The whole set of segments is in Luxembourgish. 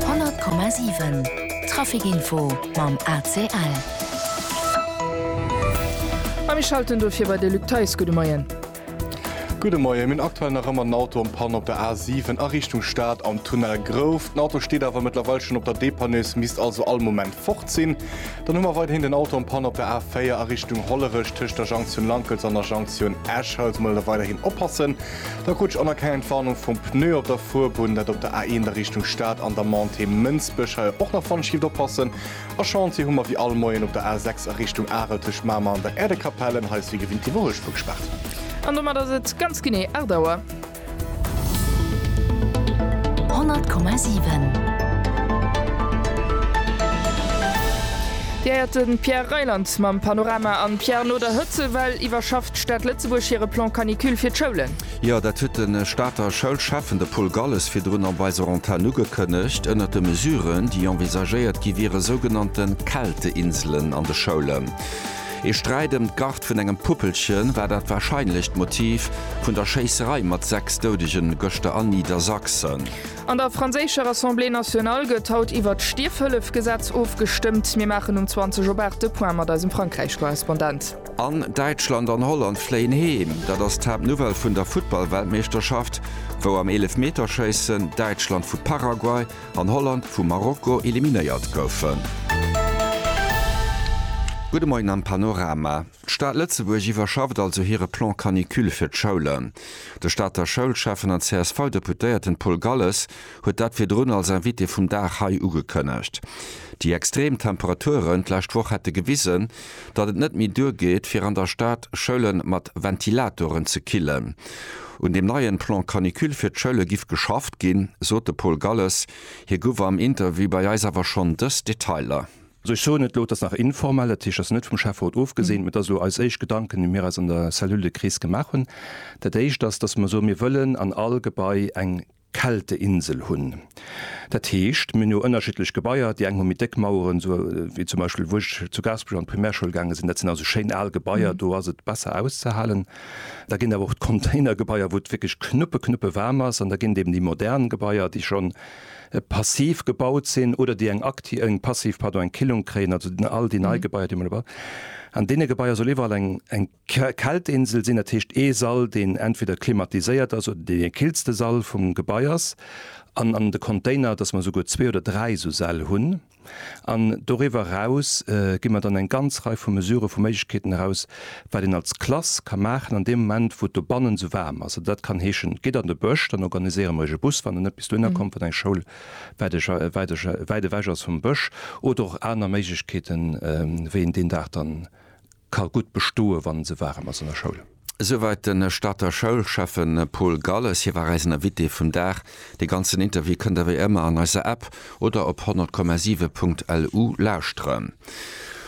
100,7 Trafic Info mam ACL. A mir schalten do fir bei de Luc Theis. Gudde Moien. Gudde Moien. Mir hunn aktuell nach ëmmer en Auto en Panne op der A7 a Richtung Stad am Tunnel Grouf. Den Auto steet awer mëttlerweil schonn op der Depanneuse, misst also all Moment fort sinn. Dann hu mer weiderhin den Auto en Panne op der A4 a Richtung Hollerech tëscht der Jonction Lankels an der Jonction Esch. Hei also mol weiderhin oppassen. Da krut ech och nach keng Entwarnung vum Pneu op der Fuerbunn. Dat op der A1 a Richtung Stad an der Montée Mënsbech. Hei och nach Wandschift oppassen. A Chantier hu mer wéi all Moien op der A6 a Richtung Arel tëscht Mamer an der Äerdekapellen. Hei ass wéi gewinnt d'Iwwerhuelspur gespaart. An domat ass et ganz genee 8 Auer. 100,7. Dir héiert de Pierre Reyland mam Panorama an Pierre no der Hëtzewell iwwerschafft. D'Stad Lëtzebuerg hire Plan Canicule fir d'Schoulen. Jo, dat huet de Stater Schoulschäffen, de Paul Galles, virdrun op eiser Antenn ugekënnegt. Ënnert de Mesuren, déi envisagéiert gi wiere sougenannte Kälteinselen an de Schoulen. Ee Sträit ëm d'Garde vun engem Puppelchen war dat warscheinlecht Motiv vun der Schéisserei mat 6 Doudegen gëschter a Niedersachsen. An der franséischer Assemblée nationale gëtt haut iwwert d'Stierfhëllef-Gesetz ofgestëmmt. Mir maachen um 20 op 8 de Point mat eisem Frankräich-Korrespondent. An Däitschland an Holland fléien heem. Dat ass d'Haaptnouvelle vun der Futtballweltmeeschterschaft, wou am Eelefmeterschéissen Däitschland vu Paraguay an Holland vu Marokko eliminéiert goufen. Gudde Moien am Panorama. D'Stad Lëtzebuerg iwwerschafft also hire Plan Canicule fir d'Schoulen. De Stater Schoulschäffen an CSV-Deputéierten Paul Galles huet dat virdrun als Invité vum Dag hei ugekënnegt. Déi extrem Temperaturen d'lescht Woch hätte gewisen, datt et net méi duergeet, fir an der Stad Schoule mat Ventilatoren ze killen. Un deem neien Plan canicule fir d'Schoule giff geschafft ginn, sot de Paul Galles. Hie guff am Interview bei eis awer schonn dës Detailer. Also ech soen et elo, et ass nach informell, dat heescht, et ass net vum Schäfferot ofgesinn, mee dat ass elo eis éischt Gedanken, déi mir eis an der Cellule de crise gemaach hunn. Dat éischt ass, datt mer soen, mir wëllen an all Gebai eng. Kälteinsel hunn. Dat heescht, mir hunn jo ënnerschiddlech Gebaier, déi eng hu méi déck Maueren, esou wéi zum Beispill wou ech zu Gaasperech an d'Primärschoul gaange sinn, dat sinn also schéin al Gebaier, do ass et besser auszehalen. Da ginn awer och d'Containergebaier, wou et wierklech knuppe knuppe waarm ass an da ginn et eben déi modern Gebaier, déi schonn passiv gebaut sinn oder déi eng aktiv, eng passiv, pardon, eng Killung kréien, also all déi nei Gebaier, déi mer elo bauen. An deene Gebaier soll iwwerall eng. Kältinsel sinn, dat heescht ee Sall, deen entweder klimatiséiert ass oder deen dee killste Sall vum Gebai ass. An an de Container, dass mer esouguer zwee oder dräi esou Säll hunn. An doriwwer eraus gi mer dann eng ganz Rei vu Mesurë vu Méiglechkeeten eraus, wat een als Klass ka maachen an deem Moment, wou et dobannen esou waarm ass. Dat kann heeschen, gitt an de Bësch, dann organiséiere mer iech e Bus, wann en net bis dohinner kommt, wat eng Schoul wäit ewech ass vum Bësch, oder och aner Méiglechkeeten, wéi een deen Dag dann. ka gutt bestoe wann se waarem ass an der Schoul. Esouwäit de Stater Schoulschäffe Paul Galles. Hie war eisen Invité vum Dag. Dee ganzen Interview kënnt der wéi ëmmer an eiser App oder op 100,7 Punkt LU lauschteren.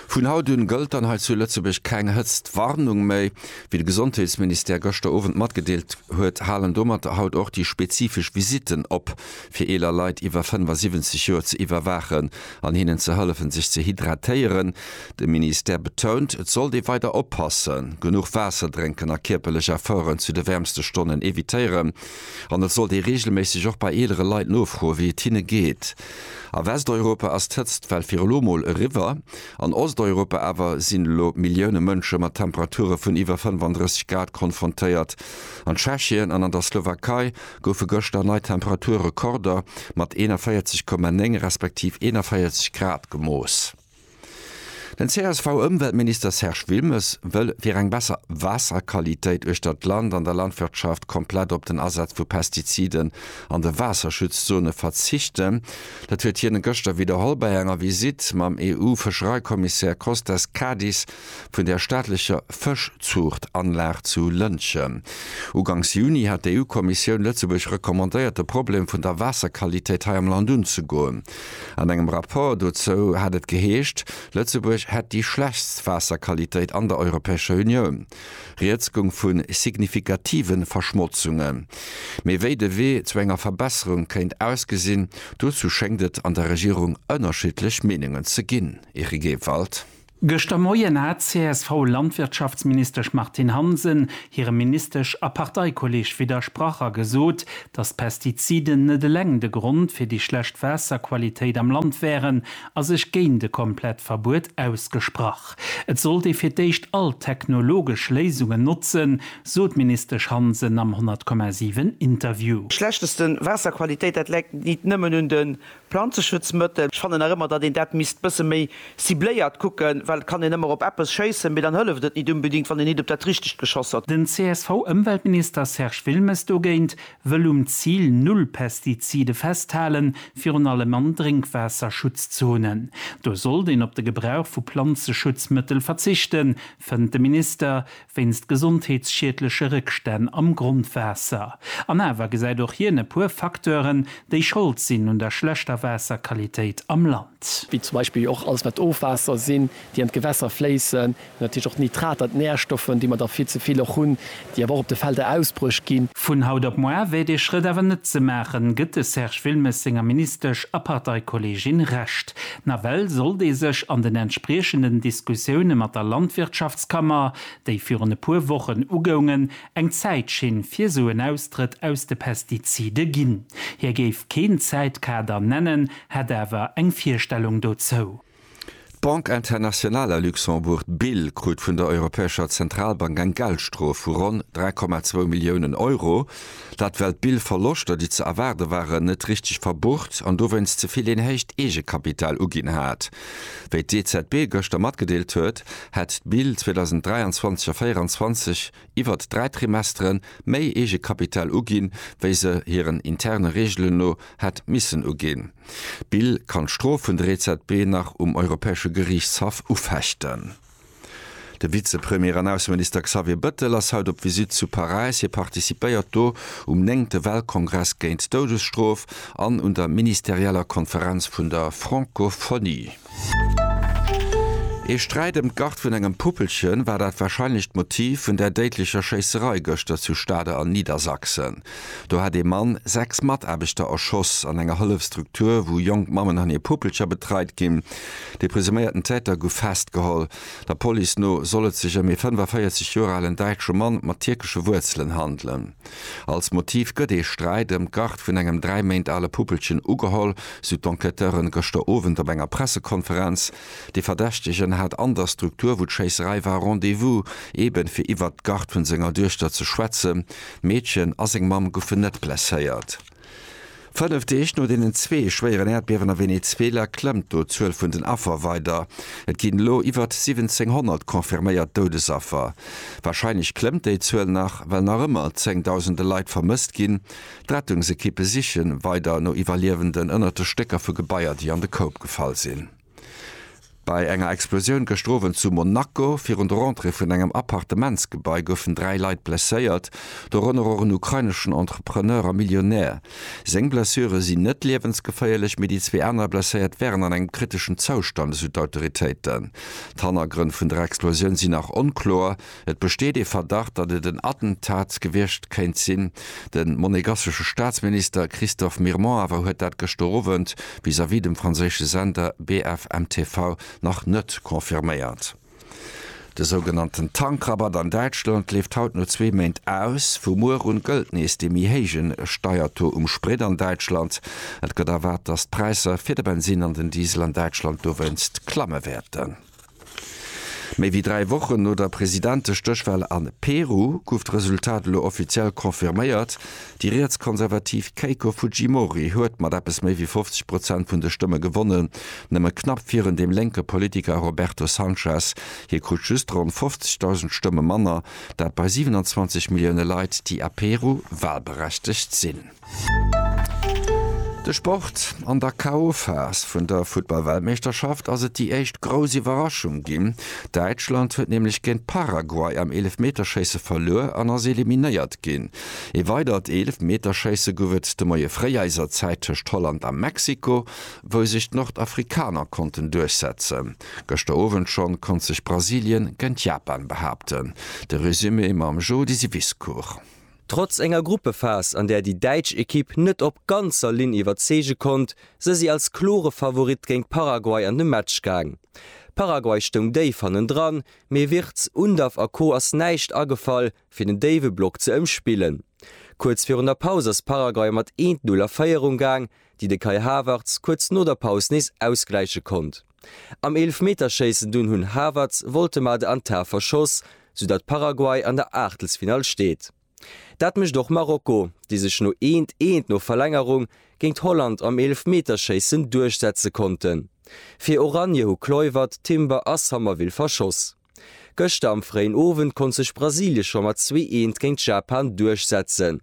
Vun haut un gëllt dann hei zu Lëtzebuerg keng Hëtztwarnung méi. Wéi de Gesondheetsministère gëschter Owend matgedeelt huet, halen domat haut och déi spezifesch Visitten op. fir eeler Leit iwwer 75 Joer ze iwwerwaachen an hinnen ze hëllefen, sech ze hydratéieren. De Ministère betount, et sollt ee weider oppassen, genuch Waasser drénken a kierperlech Efforten zu de wäermste Stonnen evitéieren. An et sollt ee reegelméisseg och bei eelere Leit nofroen, wéi et hinne geet. A Westeuropa ass d'Hëtzt well fir elo mol eriwwer. An Osteuropa awer sinn elo Millioune Mënsche mat Temperature vun iwwer 35 Grad konfrontéiert. An Tschechien an an der Slowakei goufe gëschter nei Temperaturrekorder mat 41,9 respektiv 41 Grad gemooss. Den CSV-Ëmweltminister Serge Wilmes wëll fir eng besser Waasserqualitéit uechter d'Land an der Landwirtschaft komplett op den Asaz vu Pestiziden an de Waasserschutzzone verzichten. Dat huet hien gëschter widderholl bei enger Visitt mam EU-Fëschereikommissär Kostas Kadis. vun der staatlecher Fëschzuuchtanlag zu Lëntgen. Uganks Juni hat d'EU-Kommissioun Lëtzebuerg recommandéiert, de Problem vun der Waasserqualitéit hei am Land unzegoen. An engem Rapport dozou hat et geheescht, Lëtzebuerg hätt déi schlechtst Waasserqualitéit an der Europäescher Unioun. Rieds goung vu signifikative Verschmotzungen. Mee wéi de Wee zu enger Verbesserung kéint ausgesinn, dozou schéngt et an der Regierung ënnerschiddlech Meenungen ze ginn. Erikewald. Gëschter Moien hat d'CSV-Landwirtschaftsministesch Martine Hansen hirem Ministesch a Parteikolleeg widdersprach a gesot, datt d'Pestiziden net eleng de Grond fir déi schlecht Waasserqualitéit am Land wären a sech géint e komplett Verbuet ausgesprach. Et sollt ee fir d'éischt all technologesch Léisungen notzen, sot d'Ministesch Hansen am 100,7 Interview. Schlechtesten Waasserqualitéit, dat läit nit nëmmen un de Planzeschutzmëttel, ech fannen nach ëmmer, datt een dat misst e bësse méi cibléiert kucken, well et kann een ëmmer op eppes schéissen, mee dann hëlleft et nit unbedingt, wann een nit op dat Richtegt geschoss huet. Den CSV-Ëmweltminister Serge Wilmes dogéint wëll um Zil Null Pestizide festhalen, virun allem an Drénkwaasserschutzzonen. Do sollt een op de Gebrauch vu Planzeschutzmëttel verzichten, fënnt de Minister, wéinst gesondheetsschiedleche Réckstänn am Grondwaasser. An awer gesäit och hien e puer Facteuren, déi Schold sinn un der schlechter Waasserqualitéit am Land. Wéi zum Beispill och alles, wat Ofwaasser sinn, déi an d'Gewässer fléissen, natierlech och Nitrater, d'Närstoffen, déi mer der vill ze vill och hunn, déi awer och op de Felder ausbruecht ginn. Vun haut op moar wär dee Schrëtt awer net ze maachen, gëtt de Serge Wilmes senger Ministesch a Parteikolleegin Recht. Nawell sollt ee sech an den entspriechenden Diskussioune mat der Landwirtschaftskammer, déi virun e puer Wochen ugoungen, eng Zäitschinn fir esou en Austrëtt aus de Pestizide ginn. Hie géif keen Zäitkader nennen, hätt awer eng Virstellung dozou. D'Banque Internationale à Luxembourg, d'BIL, krut vun der Europäescher Zentralbank eng Geldstrof vu ronn 3,2 Milliounen Euro, Dat well d'Billverloschter, déi ze erwaarde waren, net richteg verbucht an dowéinst ze vill een héicht Eegekapital uginn hat. Wéi d'EZB gëschter matgedeelt huet, hätt d'Bill 2023 a 24 iwwert dräi Trimestere méi Eegekapital uginn, wéi se hiren interne Reegelen no hätt missen uginn. D'Bill kann d'Strof vun der EZB nach um Europäesche Geriichtshaff ufechten. De Vizepremier an Ausseminister Xavier Bëttel ass haut op Visite zu Paräis. Hie participéiert do um néngte Weltkongress géint d'Doudesstrof an un der ministerieller Konferenz vun der Francophonie. Ee Sträit ëm d'Garde vun engem Puppelchen war dat warscheinlecht Motiv vun där déidlecher Schéisserei gëschter zu Stade an Niedersachsen. Do hätt ee Mann sechs Mataarbechter erschoss an enger Hëllefstruktur, wou jonk Mammen an hir Puppelcher betreit ginn. De presuméierten Täter gouf festgeholl. Der Police no soll et sech ëm ee 45 Joer alen däitsche Mann mat tierkesche Wuerzelen handelen. Als Motiv gëtt ee Sträit ëm d'Garde vun engem dräi Méint ale Puppelchen ugeholl, sou d'Enquêteuren gëschter Owend op enger Pressekonferenz. De Verdächtegen hat an der Struktur, wou d'Schéisserei war, Rendez-vous, eeben fir iwwert d'Garde vun senger Duechter ze schwätzen. D'Meedchen a seng Mamm goufen net blesséiert. Fënnef Deeg no deenen zwee schwéieren Äerdbiewen a Venezuela klëmmt do d'Zuel vun den Affer weider. Et ginn elo iwwert 1.700 confirméiert Doudesaffer. Warscheinlech klëmmt déi Zuel nach, well nach ëmmer zéngdausende Leit vermësst ginn. D'Rettungsekippe siche weider no Iwwerliewenden ënnert de Stécker vu Gebaier, déi an de Koup gefall sinn. Bei enger Explosioun gëschter Owend zu Monaco virun der Entrée vun engem Appartementsgebai goufen dräi Leit blesséiert, dorënner och en ukraineschen Entrepreneur a Millionär. Seng Blessure sinn net liewensgeféierlech, mee déi zwee aner Blesséiert wären an engem kriteschen Zoustand, esou d'Autoritéiten. D'Hannergrënn vun der Explosioun sinn nach onkloer. Et besteet ee Verdacht, datt et en Attentat gewiescht kéint sinn. De monegassesche Staatsminister Christophe Mirmont awer huet dat gëschter Owend vis-à-vis dem franséische Sender BFM TV nach net confirméiert. De sougenannten Tankrabatt an Däitschland leeft haut no zwee Méint aus. Vu muer un gëllt nees dee méi héijen Steiertaux um Sprit an Däitschland. Et gëtt erwaart, datt d'Präisser fir de Bensinn an den Diesel an Däitschland dowéinst klamme wäerten. Méi wéi dräi Wochen no der Presidentestéchwahl a Peru gouf d'Resultat elo offiziell confirméiert, Déi rietskonservativ Keiko Fujimori huet mat eppes méi wéi 50 Prozent vun de Stëmme gewonnen, nëmme knapp virun dem lénke Politiker Roberto Sanchez. Hie krut just ronn 50.000 Stëmme manner, dat bei 27 Millioune Leit, déi a Peru wahlberechtegt sinn. De Sport, An der KO-Phas vun der Futtball-Weltmeeschterschaft ass et déi éischt grouss Iwwerraschung ginn. Däitschland huet nämlech géint Paraguay am Eelefmeterschéisse verluer an ass eliminéiert ginn. Ee weidert Eelefmeterschéisse gouf et de Moie fréi eiser Zäit tëscht Holland a Mexiko, wou sech d'Nordafrikaner konnten duerchsetzen. Gëschter Owend schonn konnt sech Brasilien géint Japan behaapten. De Resumé mam Jody Wisecourt. Trotz enger Gruppephas, an där déi däitsch Ekipp net op ganzer Linn iwwerzeege konnt, se si als klore Favorit géint Paraguay an de Match gaang. Paraguay stoung déif hannendran, mee Wirtz, Undav a Co ass näischt agefall, fir den déiwe Block ze ëmspillen. Kuerz virun der Paus ass Paraguay mat 1, 0 a Féierung gaang, déi de Kai Havertz kuerz no der Paus nees ausgläiche konnt. Am Eelefmeterschéissen dunn hunn Havertz, Woltemade an Tah verschoss, sou datt Paraguay an der Aachtelsfinall steet. Dat mécht och Marokko, déi sech no eent, eent no Verlängerung géint Holland am Eelefmeterschéissen duerchsetze konnten. Fir Oranje hu Kluivert, Timber a Sommerville verschoss. Gëschter am fréien Owend konnt sech Brasilien scho mat zwee Eent géint Japan duerchsetzen.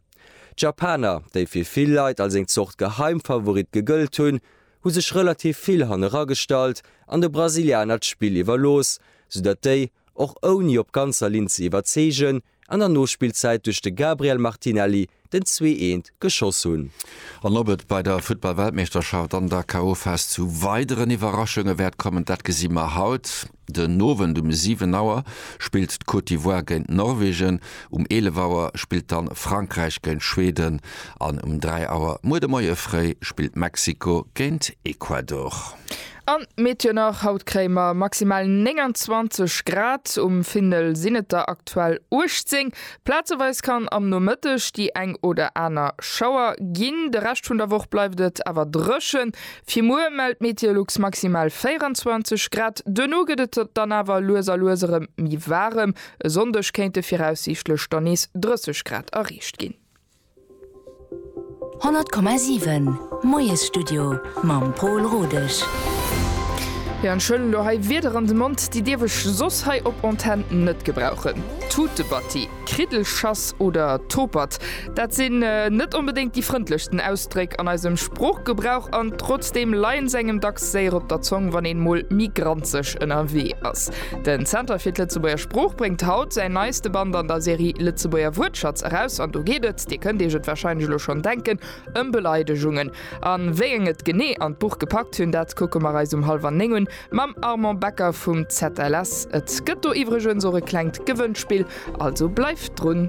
D'Japaner, déi fir vill Leit als eng Zort Geheimfavorit gegëllt hunn, hu sech relativ vill haneragestallt an de Brasilianer d'Spill iwwerlooss, soudatt déi, och ouni op ganzer Linn ze iwwerzeegen, an der Nospillzäit duerch de Gabriel Martinelli den Zwee-eent geschoss hunn. An ob et bei der Futtball-Weltmeeschterschaft an der KO-Phas zu weideren Iwwerraschunge wäert kommen, dat gesi mer haut den Owend. Um 7 Auer spillt d'Côte d'Ivoire géint Norwegen, um 11 Auer spillt dann Frankräich géint Schweden an um 3 Auer muer de Moie fréi spillt Mexiko géint Ecuador. An d'Meteo nach, Haut kréie mer maximal 29 Grad, um Findel sinn et der aktuell 18. Plazeweis kann am Nomëtteg déi eng oder aner Schauer ginn, de Rescht vun der Woch bleift et awer dréchen. Fir muer mellt Meteolux maximal 24 Grad, duerno gëtt et dann awer lues a lues erëm méi waarem. E Sonndeg kéinte viraussiichtlech dann nees 30 Grad erreecht ginn. 100,7 Moiesstudio mam Pol Rodesch. Jo an ech huelen elo hei Wierder an de Mond, déi dierf ech soss hei op Antenn net gebrauchen. Tutebatti, Kriddelschass oder Topert, dat sinn net onbedéngt déi frëndlechsten Ausdréck an eisem Sproochgebrauch an trotzdeem leien se engem dacks séier op der Zong, wann een mol méi granzeg ënnerwee ass. Den Zenter fir d'Lëtzebuerger Sprooch bréngt haut säin neiste Band an der Serie Lëtzebuerger Wuertschatz eraus an do geet et, Dir kënnt Iech et warscheinlech elo schonn denken, ëm Beleidegungen. An wéi eng et genee an d'Buch gepackt hunn, dat kucke mer eis um hallwer néng un mam Armand Becker vum ZLS. Et gëtt do iwwregens och e klengt Gewënnspill, also bleift drun.